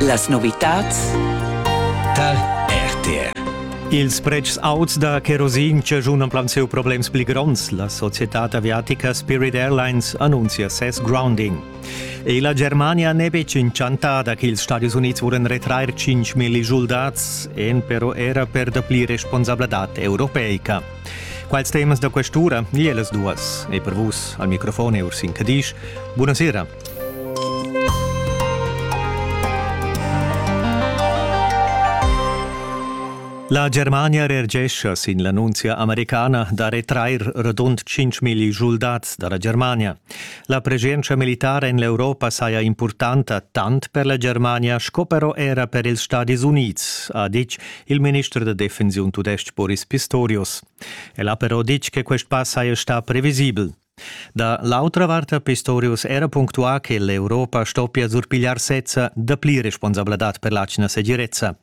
Las novitads tar RTR. Ils pretschs auts da kerosin chaschun plan siu problems pli gronds. La societad aviatica Spirit Airlines annunzia ses grounding. E la Germania n'è betg inchantada ch'ils Stadis Unids vulan retrair 5.000 soldats, en però era per dapli responsabladad europeica. Quals temas da questura? Ie las duas. E per vus, al microfon e Ursin Cadisch, buonasera. La Germania reagescha sin l'annunzia americana da retrair rodund 5.000 schuldats da la Germania. La preschientscha militara en l'Europa saja impurtanta tant per la Germania sco però era per ils Stadis Unids, ha ditg il minister da defensiun tudestg Boris Pistorius. El ha però ditg che quest pass saja stà previsibel. Da l'autra vart ha Pistorius era punctuà che l'Europa stoppia surpigliar sezza dapli responsabladad per l'atgna segirezza.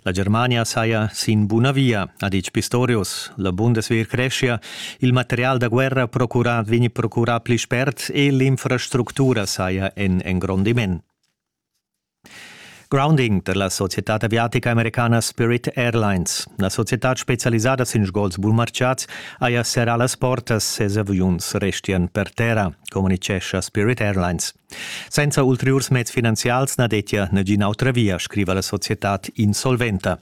La Germania saja sin buna via, ha ditg Pistorius. La Bundeswehr creschia, il material da guerra procurà vegni procurà pli spert e l'infrastructura saja en engrondiment. Grounding da la societad aviatica americana Spirit Airlines. La societad specialisada sin sgols bunmartgads haja serrà las portas, ses aviuns restian per terra, communitgescha Spirit Airlines. Senza ulteriurs meds finanzials na dettia nagina autra via, scriva la societad insolventa.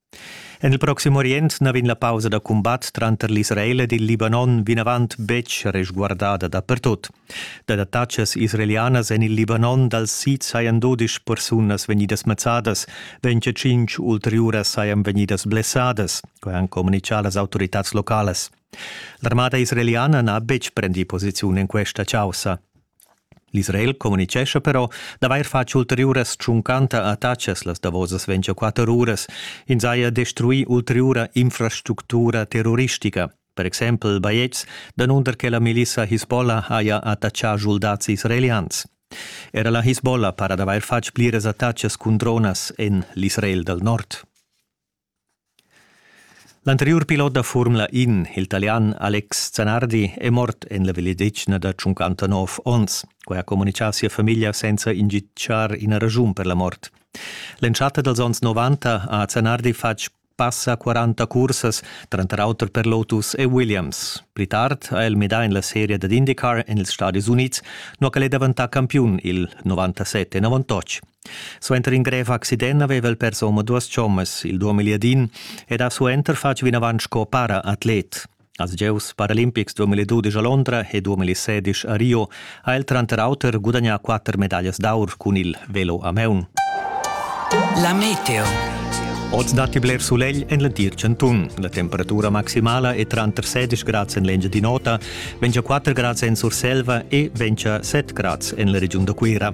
En il Proxim Orient na vegn la pausa da cumbat tranter l'Israel ed il Libanon vinavant betg resguardada dapertut. Dad attacas israelianas en il Libanon dal sid sajan dodisch persunas vegnidas mazzadas, 25 ulteriuras sajan vegnidas blessadas, quai han communitgà las autoritads localas. L'armada israeliana n'ha betg prendì posiziun en questa chaussa. L'Israel communitgescha però d'avair fatg ulteriuras tschuncanta attachas las davosas 24 uras. Ins haja destruì ulteriura infrastructura terroristica. Per exempel bajetgs, danunder che la milissa Hisbollah haja attaccà schuldads israelians. Era la Hisbollah para d'avair fatg pliras attacas cun dronas en l'Israel dal nord. L'anteriur pilot da Formula In, il Talian Alex Zanardi, è mort en la vegliadetgna da 59 onns. Quai ha communitgà sia famiglia senza inditgar ina raschun per la mort. L'entschatta dals onns 90 ha Zanardi fatg passa 40 cursas, tranter auter per Lotus e Williams. Pli tard ha el midà en la seria dad IndyCar en ils Stadis Unids, nua ch'el è daventà campiun il 97 en avantotg. Suenter in grev accident aveva il persomo duas chommas, il duamiliadin, ed ha suenter fatg vinavant sco para-atlet. Als gieus paralimpics 2012 a Londra e 2016 a Rio ha el tranter auter gudagnà quatter medaglias d'aur cun il velo a maun. La meteo. Oz datti bler sulegl en l'entir chantun. La temperatura maximala è tranter 16 grads en l'Engiadin'Ota, ventga 4 grads en Surselva e ventga 7 grads en la regiun da Cuira.